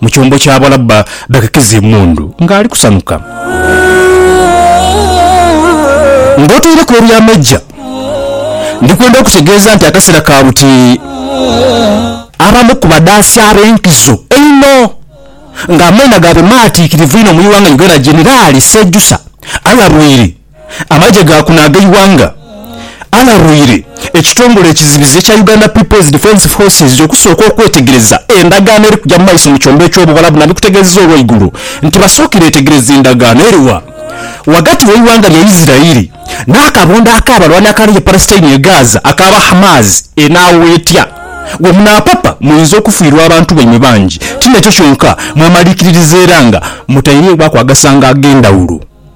Mu kyombo kya Balabba, Bekekiza emundu ng'ali kusanuka. Ng'otaireku eby'amaija, ndi kwenda okutegeeza nti akaseera ka buti abamu ku badhaasi ab'enkizo einho ng'amaina gaabwe maatiikirivu inho mu ighanga Uganda Jeneraali Sejusa alabwire Amagye ga kuno ag'eighanga alarwire ekitongole ekizibizi ekya Uganda People's Defence Forces okusooka okwetegereza endagaano eri kuja mu maiso mu kyombo eky'Obuwalabu nabikutegeezeza olweigulo nti basookire etegereze endagaano eriwa ghagati w'eighanga lya Isirairi n'akabondo ak'abalwani akali e Palestine e Gaza aka ba Hamas. Enaawo etya we munaapapa muinza okufiirwa abantu baimwe bangi. Ti n'ekyo kyonka, mwemaliikiririza era nga mutairegho akwagasaanga ag'endhawulo.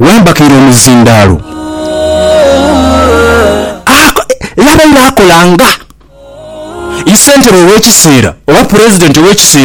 wambakaire omuzindaalo. Era abaire akola nga isentebe ow'ekiseera oba pulezidenti ow'ekiseera.